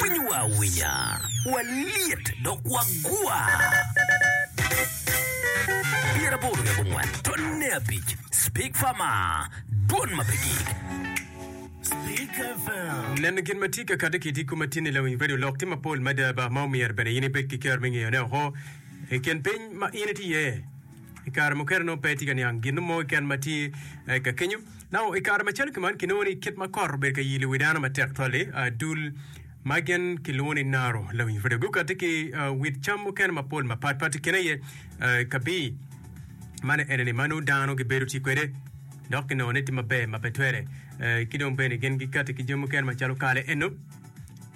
Winyo wa awinya, walyet dok wagwa. Pyeraboro dok ongwen, tonne abic, Spik Fama, dwon ma pe gik. Neno gin ma tye ka kati ki tiko ma tye ni lawiny redio lok tye mapol mada ba ma omyero bene in ibed ki ker me ngeyo ne oko i kin piny ma in itye iye. I kare mukene nongo pe itye ka niang gin no mo keken ma tye ka kenyo. Nao i kare macalo ki man, kinongo ni kit ma kot obedo ka yilo wi dano matek twal-li, dul ma gin kilwongo ni naro, lawiny pwode gukatti ki wit cam mukene mapol mapatpat. I kine aye kabir ma ni ene-ni ma nongo dano gibedo ti kwede, dok kinongo ni tye maber ma pe twere. Ki dong bene gin gikatti ki jami mukene macalo kale eno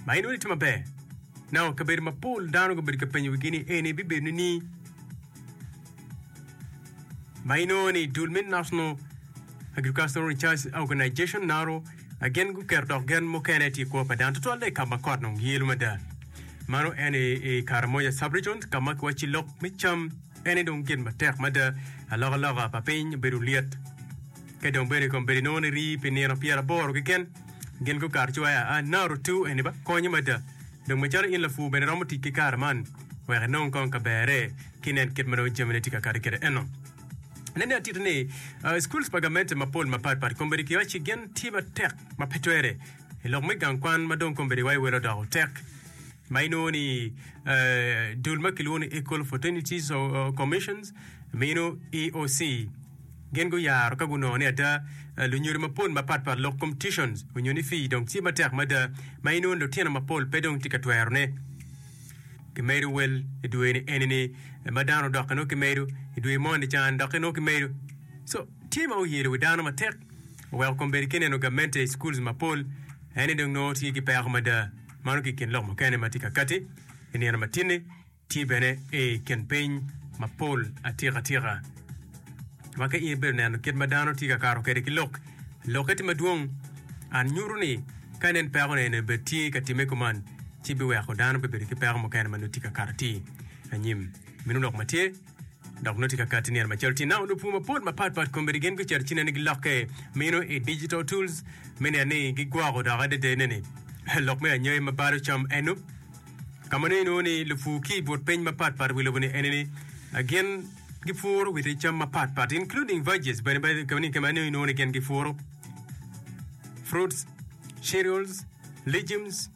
ma inongo ni tye maber. Nao kabedo mapol dano gubedo ka penyo wigi ni eni bibedo nining? Ma inongo ni dul me National Agricultural Research Organization, NARO, gin guketo dok gen mukene tye i kwo pa dano tutwalle i ka ma kot nong yelo mada. Mano en i, i Karamoja subregion ka ma kiwacci lok me cam ene dong gin matek mada. Alokaloka pa piny obedo lyet. Ka dong bene kom bedo inongo ni rii pi nino pyeraboro keken gin gukato ci wa aa NARO 2 eni ba konyo mada. Dong macalo in lapur bene iromo tic ki kare man wek inong kong ka berre ki nen kit ma nongo jamine tye ka kati kwede eno. Nen ni atiti ni, schools pa gamente mapol mapat pat kombeddi kiyoc ci gin tye matek ma pe twere i lok me gang kwan ma dong kombeddi wa iwelo doko tek ma inongo ni dul ma kilwongo ni Equal Opportunities Commissions mino, EOC. Gin guyaro ka gunongo ni ada lunyodo mapol mapat pat lok kom tuitions onyo ni fee dong tye matek mada ma inongo ni lutino mapol pe dong tye ka twero ne. Kimedo wel i dwe ni eni ni ma dano odok inongo kimedo i dwe moni ca ni dok inongo kimedo so tye ma oyelo wi dano matek oweko kom bedo ki neno gamente i schools mapol ene dong nongo tye ki peko mada mano ki kin lok mukene matye ka kati inino matini. Tye bene i kin piny mapol atikatika ma ka in ibedo neno kit ma dano tye ka kato kwede ki lok, lokke tye madwong. An nyuto ni ka nen peko ni eni obed tye ka timme kuman, ci biweko dano bibedo ki peko mukene ma nongo tye ka kato atir anyim. Meno lok ma tye. Dok nongo tye ka katti nino macalo tye nao lupur mapol mapat pat komiti gin gucito ci nene gilokke meno i digital tools me neno ni gigwoko dok adada nene lok me anyai ma balo cam eno ka ma nongo inongo ni lupur ki i but piny mapat pat wi lobo ni ene ni ah, gin gipuro witi cam mapat pat including veggies bene bene ka ni ka ma nongo inongo ni gin gipuro fruits cereals legumes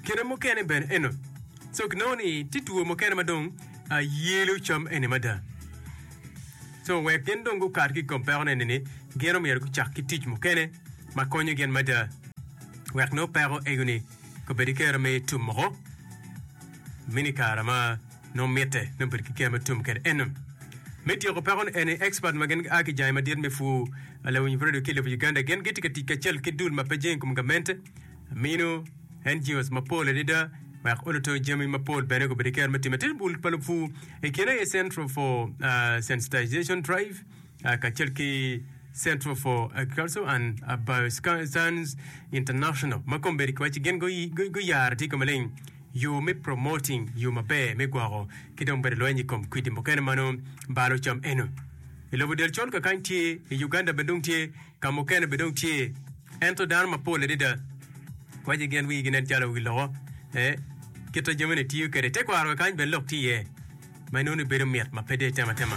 kine mukene bene eno So ginongo ni tye two mukene ma dong yelo cam eni mada. So wek gin dong gukat ki i kom peko neni ni gin omyero gucak ki tic mukene ma konyo gin mada wek nongo peko ego ni obed ki kero me tum moko mini kara ma nongo mitte ni obed ki kero me tum kede eno. Me tyeko peko ni eni expert ma gin aa ki jangi madit me pwur lawiny radio ki lobo Uganda gin gitye ka tic kacel ki dul ma pe jeng i kom gamente Amino, Engios, mapol adada wek oluto jami mapol bene gubedo ki kero me time. Tye bul pa lupwu i kine aye Central for uh, Sensitization Drive uh, kacel ki Central for Agriculture and uh, Bioscience International ma kom bedo kiwaci gin gu- gu- guyaro tye kome leng yo me promoting yo maber me gwoko ki dong bedo lweny i kom kwidi mukene ma nongo balo cam eno i lobo del col kakany tye i Uganda bene dong tye ka mukene bene dong tye Ento dano mapol adada waco gin wigi nen calo wi loko me kite jami ni tiyo kwede i tekwaro kany bene lok tye iye ma inongo ni bedo mit ma pe dee tema tema.